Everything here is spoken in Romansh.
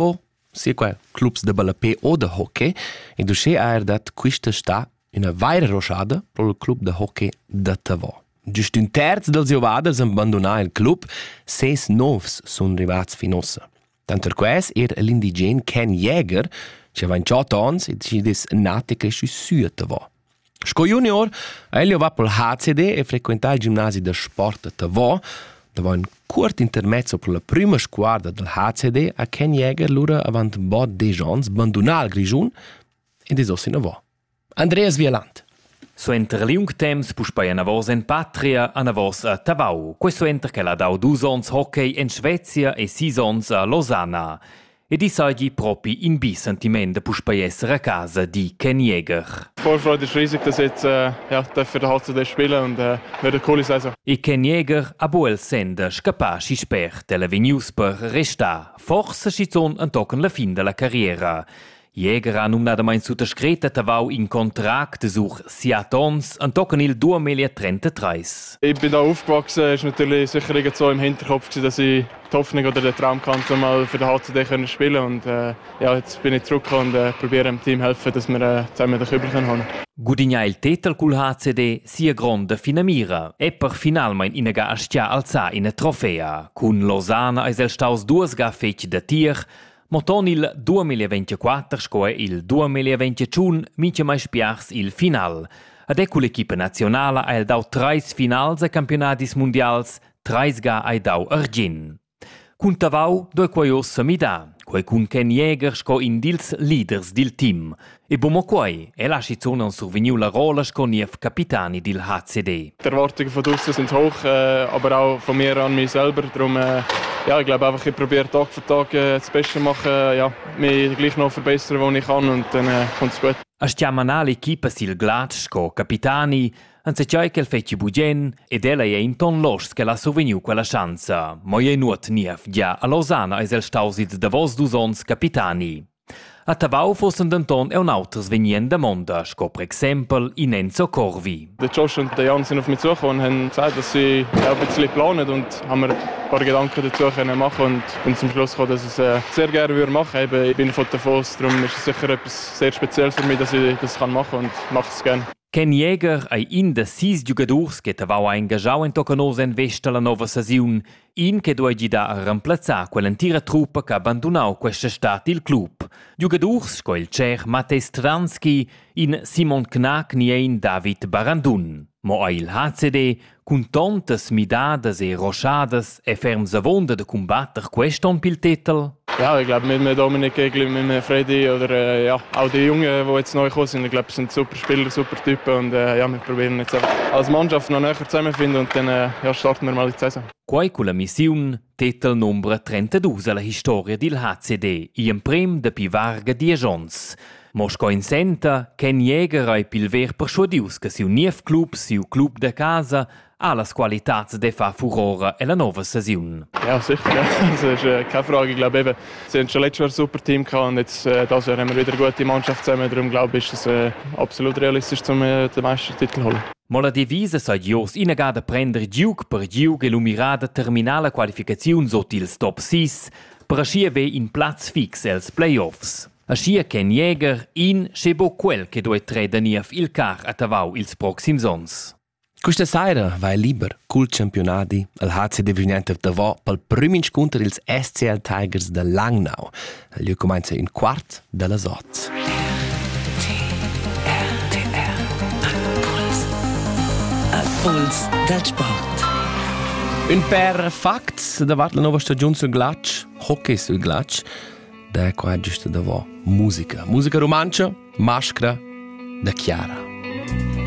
o sia qual clubs da ballapé o da hockey ed uschè eir dat quista stà üna vaira roschada pro il club da hockey da Tavò. Giust ün terz dals giovaders han bandunà il club, ses novs sun rivats fin uossa. Tanter quels er l'indigen Ken Jäger, chi ha 28 ons e decid es nat e creschü sü a Tavò. Sco junior ha el giovà pel HCD e frequentà il gimnasi da sport a Tavò. Davo ün cuort intermezzo pro la prüma squadra dal HCD ha Ken Jäger lura avant bod desch ons bandunà il Grischun ed es hoz inavò. Andreas Vieland. Suenter liung temps puspei anavos en patria, anavos a Tavau. Quei suenter ch'el ha dau dus onns hockey en Svezia e sis onns a Losanna. ed i seigi propi in bi sentiment da puspei esser a casa, di Ken Jäger. Ich freue mich riesig, dass jetzt äh, ja, für den HCD spielen und äh, wieder coole Saison. E Ken Jäger ha bu el sen da scappar schi spert dalla Venius per restar, forse schizun entochen la fin dalla carriera. Jäger ha numnadamain suttascret a Tavau in contract such siat ons entochen il 2033. Ich bin da aufgewachsen, es war natürlich sicher irgend so im Hinterkopf, dass ich die Hoffnung oder der Traum kann so mal für den HCD können spielen und äh, ja, jetzt bin ich zurück und äh, probiere dem Team helfen, dass wir äh, zusammen das über können haben. Gudignà il tetel cul HCD sia gronda finamira e per finalmein inaga aschia alzar ina trofea. Cun Losana eis el staus duas ga fetg da tir, mo ton il 2024 sco er il 2021 mincha mai spiars il final. Ad ecco l'equipa nazionala ha el dau treis finals a campionadis mundials Treis ga hai dau argien. Cun Tavau duei quei ussa midar, quei cun Ken Jäger sco in dils leaders dil team. E buca quei, el ha schizun on survegniu la rola sco niev capitani dil HCD. Die Erwartungen von draußen sind hoch, äh, aber auch von mir an mich selber. Darum, äh, ja, ich glaube einfach, ich probiere Tag für Tag äh, das Beste zu machen, äh, ja, mich gleich noch verbessern, was ich kann und dann äh, kommt es gut. As chiaman l'equipa sil glatsch sco capitani, Enzatgei ch'el fetschi bugen ed ella ei in ton loschs ch'el ha survegniu quella schanza. Mo ei nuot niev. Gia a Lausana eis el staus ils davos dus onns capitani. A Tavau fussen denton aun auters vegni en damonda, sco per exempel in Enzo Corvi. Der Josh und der Jan sind auf mich zugekommen und haben gesagt, dass sie auch ein bisschen planen und haben mir ein paar Gedanken dazu können machen und bin zum Schluss gekommen, dass ich es äh, sehr gerne würde machen würde. Ich bin von davon, darum ist es sicher etwas sehr Spezielles für mich, dass ich das machen kann und mache es gerne. Ken Jäger ei in da sis giugadurs che Tavau ha engaschau entochen oz en vesta alla nova stagiun, in che dueigi dar a remplazzar quell'entira truppa che ha bandunau questa stad il club. Giugadurs sco il tscher Matej Stranski, in Simon Knack ni ein David Barandun. Mo ei il HCD Cun tontas midadas e roschadas e ferms avunda da cumbatter quest onn pil tetel? Ja, ich glaube, mit, mit Dominik Egli, mit, mit Freddy oder äh, ja, auch die Jungen, die jetzt neu gekommen sind, ich glaube, sind super Spieler, super Typen und äh, ja, wir probieren jetzt als Mannschaft noch näher zusammenfinden und dann äh, ja, starten wir mal die Saison. Quai culla missiun Tetel numra 32 alla historia dil HCD, gl'emprem dapi varga diesch onns. Mo sco in senta, Ken Jäger ei pil ver perschuadius che siu niev club, siu club da casa, ha las qualitats de far furora ella nova sesiun. Ja, sicher. Also, ich äh, keine Frage, ich glaube eben, sind schon letztes Jahr super Team gehabt und jetzt äh, dieses Jahr haben wir wieder eine gute Mannschaft zusammen. Darum glaube ich, ist es äh, absolut realistisch, um äh, den Meistertitel zu holen. Ma la divisa sa gios inagada prender giug per giug e l'umirada terminala qualificaziun sot ils top 6 per aschi ve in plaz fix els playoffs. Aschia che Jäger in sche bo quel che doi tre da niev il car a Tavau ils proxims ons. Questa saira va el liber cul campiunadi. El HC Devrinientar davò pel prüm inscunter ils SCL Tigers da Langnau. Il gioc cumainza in quart da las ot. Impuls dal sport. Un per facts davart la nova stagiun sul glatsch, hockey sul glatsch. Da qua giusta davò musica. Musica rumantscha, maschra da Chiara.